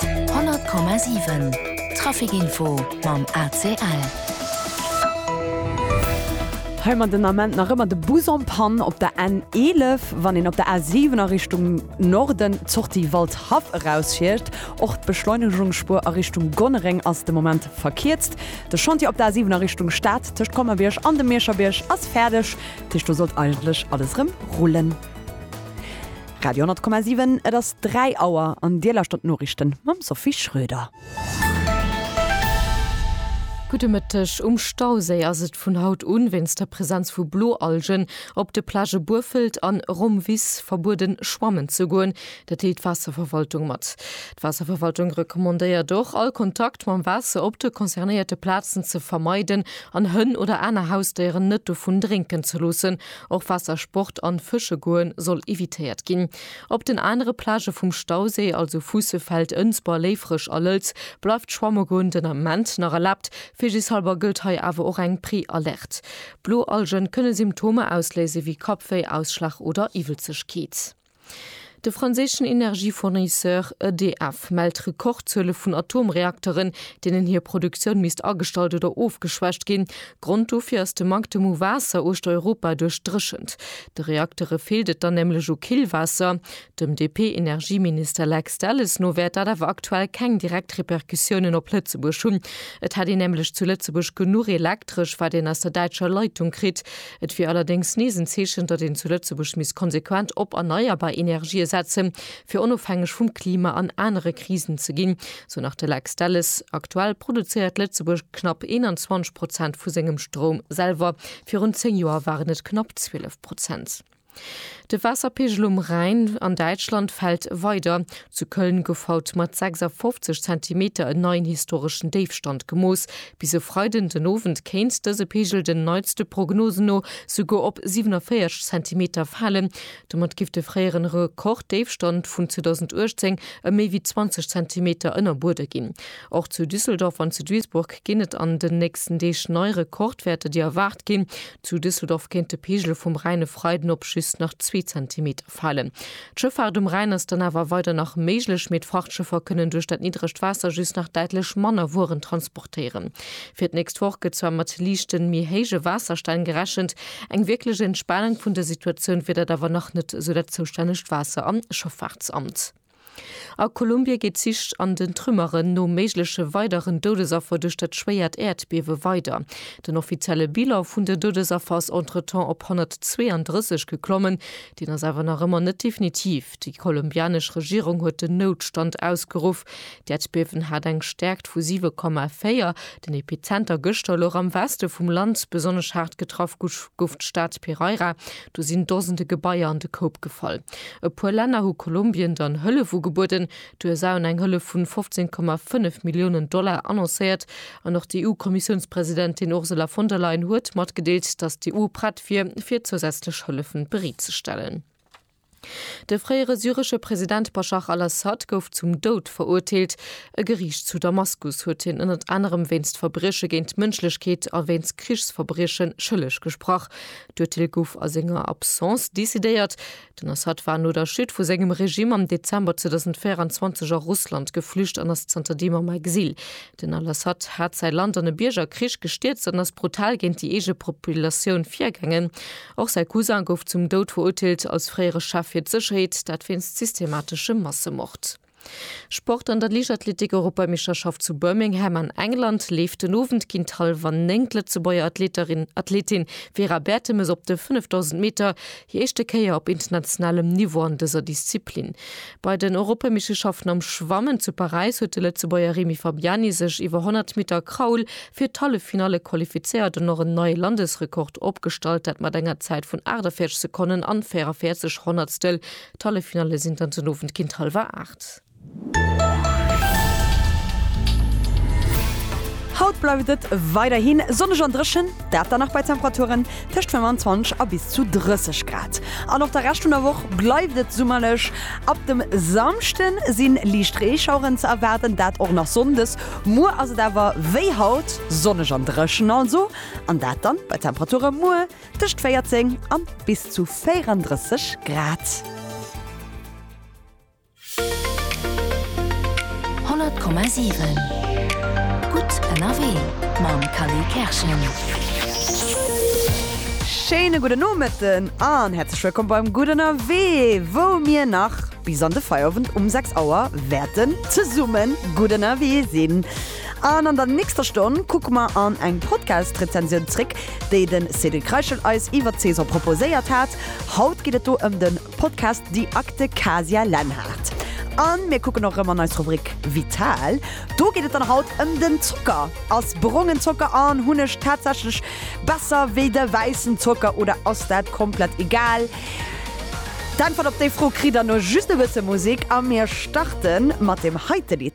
100,7 Trafic info mam ACL. Hei man den Ament nach ëmmer de Bus en Panne op der N11, wann een op der A7 a Richtung Norden d'Sortie Waldhaff erausfiert. Och d'Beschleunegungsspur a Richtung Gonnereng ass de Moment verkierzt. De Chantier op der A7 a Richtung Stad tëscht Colmer-Bierg an dem Mierscherbierg ass fäerdeg. Tëscht do sollt eigentlech alles erëm rullen. Radio 10,7 Et ass 3 Auer an Dir lauschtert d'Noriichten mam Sophie Schröder. Gudde Mëtteg, Um Stauséi ass et vun haut un wéinst der Presenz vu Bloalgen op de Plagë Burfelt an Romvis verbueden schwammen ze goen. Dat deelt d'Waasserverwaltung mat. D'Waasserverwaltung recommandéiert och all Kontakt mam Waasser op de concernéierte Plazen ze vermeiden an Hënn oder aner Hausdéieren net dovun drénken ze loossen. Och Waassersport an Fësche goen soll evitéiert ginn. Op den anere Plagë vum Stauséi, also Fuussefeld, Ënsber, Léifreg a Lëlz, bleift d'Schwamme goen den Ament nach erlaabt. Vigishalber gëllt hei awer och eng Prealerte. Blo Algen kënne Symptomer ausléise wéi Kappwéi, Ausschlag oder Iwwelzegkeet. De franséischen Energiefournisseur EDF mellt Rekordzuele vun Atomreakteren, deenen hir Produktioun misst agestallt oder ofgeschwächt ginn. Grond dofir ass de Manktem u Waasser uechter Europa duerch d'Dréchent. De Reaktere feelt et dann nämlech u Killwaasser. Dem DP-Energieminister Lex Delles no wäert dat awer aktuell keng direkt Repercussiounen op Lëtzebuerg hunn. Et hätt een nämlech zu Lëtzebuerg genuch Elektresch, wat een aus der däitscher Leitung kritt. Et wier allerdéngs nees en Zeechen, datt een zu Lëtzebuerg misst konsequent op erneierbar Energië setzen, fir onofhängeg vum Klima an anere Krisen ze ginn, sou nach de Lex Delles. Aktuell produzéiert Lëtzebuerg knapp 21 Prozent vu sengem Stroum selwer, virun 10 Joer waren et knapp 12 Prozent. De Waasserpeegel um Rhäin an Däitschland fält weider. Zu Köln gouf haut mat 56 Zentimeter en neien historeschen Déifstand gemooss. Bis e Freiden den Owend kéint dëse Peegel den neitste Prognosen no souguer op 47 Zentimeter falen. Domat géif de fréieren Rekorddéifstand vun 2018 ëm méi wéi 20 Zentimeter ënnerbuede ginn. Och zu Düsseldorf an zu Duisburg ginn et an den nächsten Deeg nei Rekordwäerter, déi erwaart ginn. Zu Düsseldorf kéint de Pegel vum Rhäin e Freiden op just nach zwee Zentimeter falen. D'Schëffaart um Rhäin ass dann awer weider nach méiglech, mee d'Frachtschëffer kënnen duerch dat niddregt Waasser just nach däitlech manner Wueren transportéieren. Fir d'nächst Woch gëtt zwar mat liichten, mee héije Waasserstänn gerechent, eng wierklech Entspanung vun der Situatioun wier dat awer nach net, esou dat zoustännegt Waasser a Schëffaartsamt. A Kolumbie geet d'Sich an den Trümmeren no méigleche weideren Doudesaffer duerch dat schwéiert Äerdbiewe weider. Den offizielle Bilan vun den Doudesaffer ass entretemps op 132 geklommen. Deen ass awer nach ëmmer net definitiv. Déi kolumbianesch Regierung huet den Noutstand ausgeruff. D'Äerdbiewen hat eng Stäerkt vu 7,4. Den Epizenter gëschter louch am Weste vum Land. Besonnesch haart getraff gouf d'Stad Pereira, Do sinn Dosende Gebaier an de Koup gefall. E puer Länner hu Kolumbien dann Hëllef ugebueden. D'USA hunn eng Hëllef vun 15,5 Milliounen Dollar annoncéiert. An och d'EU-Kommissiounspresidentin Ursula von der Leyen huet matgedeelt, datt d'EU prett wier, fir zousätzlech Hëllefen bereet ze stellen. De fréiere syresche President Baschar al-Assad gouf zum Doud verurteelt. E Geriicht zu Damaskus huet hien ënnert anerem wéinst Verbrieche géint d'Mënschlechkeet a wéinst Krichsverbrieche schëlleg gesprach. D'Urteel gouf a senger Absence decidéiert. Den Assad war no der Chute vu sengem Regime am Dezember 2024 a Russland geflücht an ass zanter deem am Exil. Den al-Assad hat säi Land an e Biergerkrich gestierzt an ass brutal géint déi eege Populatioun virgaangen. Och säi Cousin gouf zum Doud verurteelt, als fréiere Chef fir d'Sécherheet, dat wéinst systemateschem Massemord. Sport, An der Liichtathletik-Europameisterschaft zu Birmingham an England leeft den Owend géint hallwer néng d'Lëtzebuerger Athleterin Athletin Vera Bertemes op de 5000 Meter hir éischte Kéier op internationalem Niveau an dëser Disziplin. Bei den Europameisteschaften am Schwammen zu Paräis huet de Lëtzebuerger Remy Fabiani sech iwwer 100 Meter Kraul fir d'Halleffinalle qualifizéiert an och en neie Landesrekord opgestallt, dat mat enger Zäit vun 48 Sekonnen an 44 Honnertstel D'Halleffinalle sinn dann den Owend géint hallwer 8. Haut bleift et weiderhi sonneg an dréchen, dat dann nach bei Temperaturen tëscht 25 a bis zu 30 Grad. An och de Rescht vun der Woch bleift et summerlech. Ab dem Samschde si liicht Reeschaueren ze erwaarden, dat och nach sonndes. Muer ass et awer wéi haut sonneg an dréchen, also an dat dann bei Temperature muer tëscht 14 a bis zu 34 Grad. Schéine gudden Nomëtten an häerzlech wëllkomm beim Gutt Ënnerwee, wou mir nach bis an de Feierowend um 6 Auer wäerten zesummen gutt ënnerwee sinn. An an der nächster Stonn kucke mer an eng Podcast-Rezensioun zréck, déi de Cédric Reichel eis iwwer Cesar proposéiert hat. Haut geet et do ëm de Podcast Die Akte Kasia Lenhardt. A mir kucken och erëm an eis Rubrik Vital. Do geet et dann haut ëm den Zocker. Ass brongen Zocker an Hunneg tatsächlech besser wéi de wäissen Zocker oder ass dat komplett egal? D'Äntwert op déi Fro kritt der no just e bësse Musek a mir starte mat deem heite Lidd.